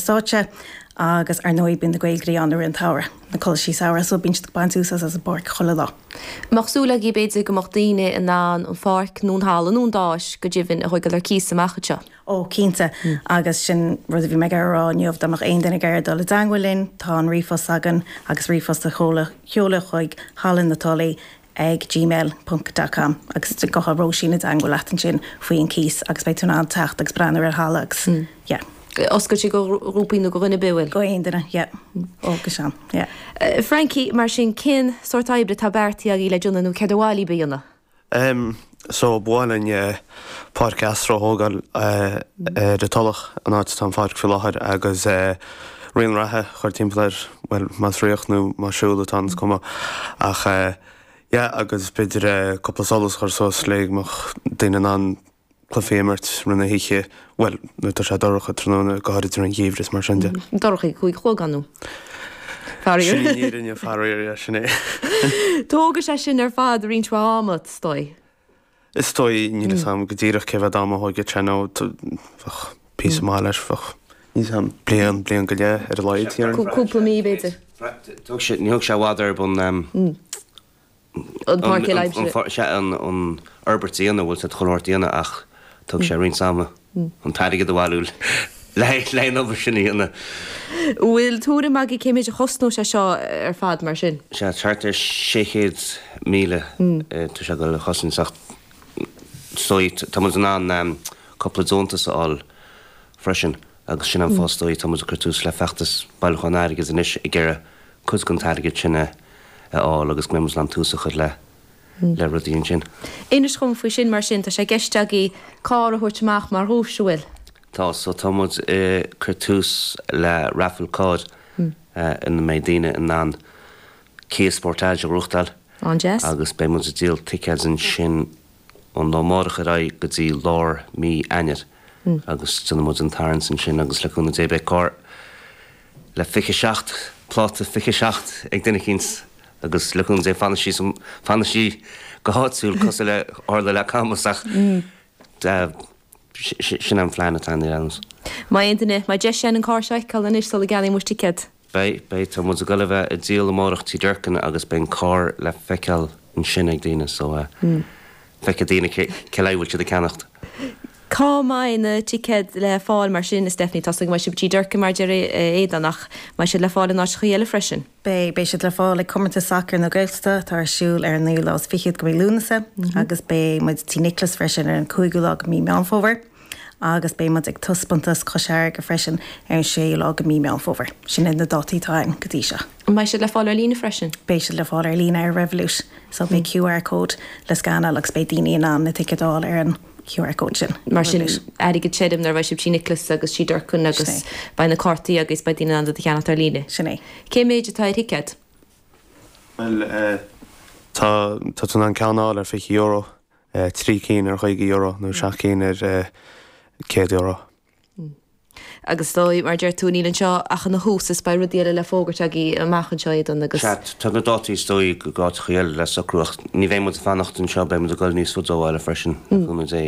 stáitse agus ar ndóigh bíonn na Gaeilgoirí ann i rith an tsamhraidh, na coláisí samhraidh, so bíonn siad ag baint úsáid as an bpáirc chuile lá. Bheadh súil agaibh b'fhéidir go mbeadh daoine in ann an pháirc nó an halla nó an stáitse go deimhin a thoigil ar cíos amach anseo. Ó, cinnte, agus sin rud a bhí mé ag iarraidh a rá inniu, dá mbeadh aon duine ag iarraidh dul i dteangmhail linn, tá an ríomhphost againn agus ríomhphost a sheoladh chuig Halla na Tulaí ag gmail ponc dot com agus gabhfaidh Róisín i dteangmháil leat ansin faoi an cíos agus beidh tú in ann teacht agus breathnú ar an halla agus yeah. Oscailte go ghrúpaí nó go dhuine ar bith? Go aon duine, yeah. Ó, go deimhin, yeah. Frankie, mar sin, cén sórt oibre atá beartaithe agaibh le déanamh nó céard ba mhaith libh a dhéanamh? So ba mhaith linn páirc astro a thógáil ar an Tulach, an áit atá an pháirc faoi láthair, agus raon reatha a chur timpeall air, bhuel, más rith nó más siúl atá ann is cuma ach yeah agus b'fhéidir cúpla solas a chur suas le go mbeadh daoine in ann cluichí a imirt rith na hoíche. Bhuel, nuair atá sé dorcha tráthnóna, go háirid i dtaobh an gheimhreadh is mar sin de. Dorcha cúig a chlog an uair sin. Faraor. Sin an fhírinne, faraor, yeah, sin é. Tógfaidh sé sin ar fad roinnt mhaith ama, is dóigh. Is dóigh, níl fhios agam go díreach cé mhéad ama a thógfadh sé nó bheadh píosa Mm. maith leis, bheadh níos mó ná bliain, bliain go leith ar a laghad déarfainn. Cú- Cúpla mí b'fhéidir. Thóg sé, níor thóg sé i bhfad ar bun, um, an pháirc i Leimsidh. An, sea, an, an fhorbairt a dhéanamh, bhuel, tá an fhorbairt déanta ach thóg sé roinnt ama an t-airgead a bhailiú le haghaidh an obair sin a dhéanamh. Bhfuil tuairim agat cé mhéid a chosnódh sé seo ar fad mar sin? Sea, thart ar sé chéad míle atá sé ag goil ag cosaint ach tá muid in ann cúpla deontas a fháil freisin. Agus sin an fáth is dóigh, tá muid ag cur tús le feachtas bailiúcháin airgid anois ag iarraidh cuid dhen t-airgead sin a fháil agus go mbeidh muid in ann tús a chur le rudaí ansin. Inis dhom faoi sin mar sin, tá sé i gceist agaibh carr a thabhairt amach mar dhuais, an bhfuil? Tá, so tá muid ag cur tús le raifil cairr ina mbeidh daoine in ann Kia Sportage a ghnóthachtáil. Ó, an-deas. Agus beidh muid ag díol ticéid ansin. ón lá amárach ar aghaidh go dtí lár mí Eanáir agus déanfaidh muid an tarraingt ansin agus le cúnamh Dé beidh carr le fiche seacht, pláta fiche seacht ag duine eicínt agus le cúnamh Dé fanfaidh sí san, fanfaidh sí go háitiúil cosúil le a tharla le Camas ach sin an plean atá anois. An mbeidh muid, an mbeidh muid in ann an carr seo a fheiceáil anois sula gceannaíonn muid ticéad. Beidh, beidh. Tá muid ag dul a bheith ag díol amárach Tí Durkin agus beidh an carr le feiceáil ansin ag daoine so eh feicfidh daoine cé, cé lena aghaidh a bhfuil siad ag ceannacht. Cá mbeidh na ticéid le fáil mar sin a Stephanie? Tá a fhios agam go mbeidh siad Tí Durkin mar a deir Aodán ach mbeidh siad le fáil in áiteachaí eile freisin? Beidh, beidh siad le fáil ag Comórtas Sacair na Gaeltachta atá ar siúl ar an naoú lá is fichead go mí Lúnasa agus beidh muid Tí Nicholas freisin ar an cúigiú lá go mí Meán Fómhair. agus beidh muid ag taispeántas Chois Fharraige freisin ar an 6ú lá de Mí Meán Fómhair. Sin iad na dátaí atá ann go dtí seo. An mbeidh siad le fáil ar líne freisin? Beidh siad le fáil ar líne ar Revolut. So beidh QR code le scanáil agus beidh daoine in ann na ticéid a fháil ar an QR code sin. Mar sin, airgead tirim nuair a bheidh sibh Tí Nioclás agus Tí Durcan agus beidh na cártaí agus beidh daoine in ann iad a cheannacht ar líne. Sin é. Cé méid atá ar thicéad? Bhuel, tá tú in ann ceann a fháil ar fiche euro. 3 cinn ar €50 nó 7 cinn ar €100. Agus dóigh, mar a deir tú, níl anseo ach ina thús, is beidh rudaí eile le fógairt agaí amach anseo, Aodán, agus. Sea, tá na dátaí is dóigh d'áiteacha eile le socrú ach ní bheidh muid ag fanacht anseo, beidh muid ag gol níos faide ó bhaile freisin, le cúnamh Dé.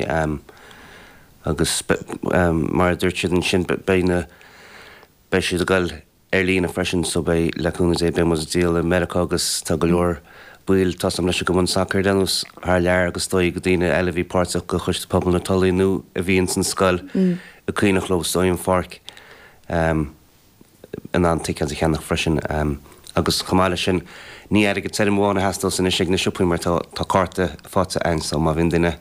Agus mar a dúirt siad ansin, beidh na, beidh siad ag gol. ar líne freisin so beidh le cúnamh Dé beidh muid ag díol i Meiriceá agus tá go leor baill atá suim leis an gcumann sacair a leanúint thar lear agus dóigh go daoine eile a bhí páirteach de choiste pobail na Tulaí nó a bhí ins an scoil ag caoineadh leo so aon pháirc ehm in ann ticéad a cheannach freisin ehm agus chomh maith leis sin ní airgead tirim amháin a theastós anois ag na siopaí mar tá tá cárta faighte a'ainn so má bhíonn duine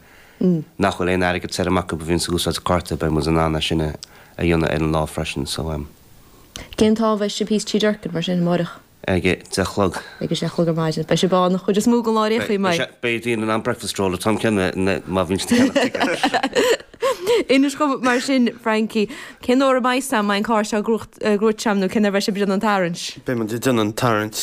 nach bhfuil aon airgead tirim acu a bhíonns ag úsáid cárta beidh muid in ann é sin a a dhéanamh ar an lá freisin so ehm. Cén t-am a bheidh sibh thíos Tí Durcan mar sin amáireach? Ag a deich a chlog. Ag a deich a chlog ar maidin. Beidh sibh ann an chuid is mó den lá ar aon chaoi, an mbeidh? Beidh daoine in ann breakfast roll an t-am céanna má bhíonn siad ag ceannach ticéid. Inis dhom mar sin, Frankie, cén uair a mbeidh sam, mbeidh an carr seo ag gruaigh, gruaig sam nó cén uair a bheidh sibh ag déanamh an tarraingt? Beimid ag déanamh an tarraingt.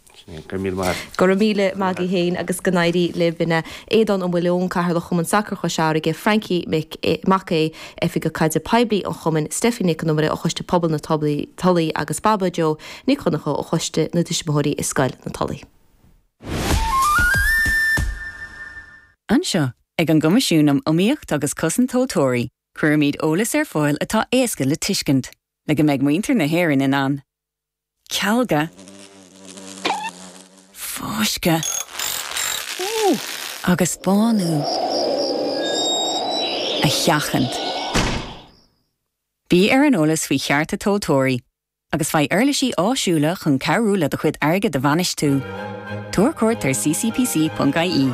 Go raibh míle maith agat féin agus go n-éirí libh. Aodán Ó Maoileoin, Cathaoirleach Chumann Sacair Chois Fharraige, Frankie Mac Aodh, Oifigeach Caidrimh Poiblí an Chumainn, Steffi Nic an Iomaire ó Choiste Pobail na Tulaí agus Baba Jo Nic Dhonncha ó Choiste na dTuismitheoirí i Scoil na Tulaí. Anseo ag an gCoimisiún um Iomaíocht agus Cosaint Tomhaltóirí, cuirimid eolas ar fáil atá éasca le tuiscint, le go mbeidh muintir na hÉireann in ann. cealga, fáisceadh agus bánú a sheachaint. Bí ar an eolas faoi chearta tomhaltóirí agus faigh uirlisí áisiúla chun cabhrú le do chuid airgid a bhainistiú. Tabhair cuairt ar ccpc.ie.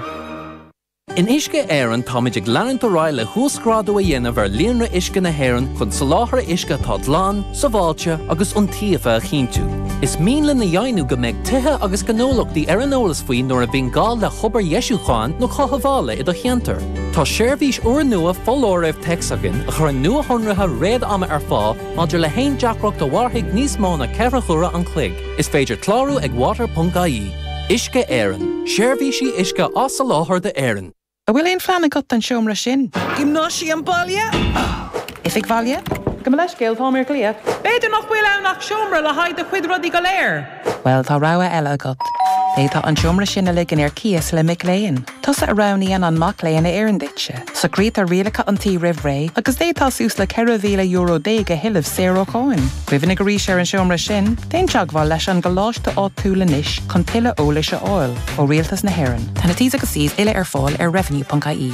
In Uisce Éireann táimid ag leanúint ar aghaidh le huasghrádú a dhéanamh ar líonra uisce na hÉireann chun soláthar uisce atá glan, sábháilte agus iontaofa a chinntiú. Is mian linn a dheimhniú go mbeidh tithe agus gnólachtaí ar an eolas faoi nuair a bhíonn gá le hobair dheisiúcháin nó chothabhála i do cheantar. Tá seirbhís úrnua foláirimh téacs againn a chuireann nuashonruithe réad-ama ar fáil maidir le haon deacracht a mhairfidh níos mó ná ceithre huaire an chloig. Is féidir clárú ag water.ie. Uisce Éireann, seirbhísí uisce á soláthar d'Éirinn. An bhfuil aon phlean agat don seomra sin? Giomnáisiam baile? Oifig bhaile? Gabh mo leithscéal, táim ar glaoch. B'fhéidir nach bhfuil ann ach seomra le haghaidh do chuid rudaí go léir. Bhuel, tá rogha eile agat. D'fhéadfá an seomra sin a ligean ar cíos le mic léinn. Tusa a roghnaíonn an mac léinn a oireann duitse. Socraítear rialacha an tí roimh ré agus d'fhéadfá suas le €14,000 a thuilleamh saor ó cháin. Cuimhnigh arís ar an seomra sin, déan teagmháil leis an gcoláiste áitiúil anois chun tuilleadh eolais a fháil ó Rialtas na hÉireann. Tá na T's agus C's uile ar fáil ar revenue.ie.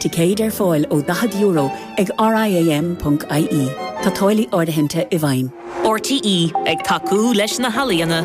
Ticéid ar fáil ó €40 ag RIAM.ie. Tá táillí áirithinte i bhfeidhm. RTÉ ag tacú leis na healaíona.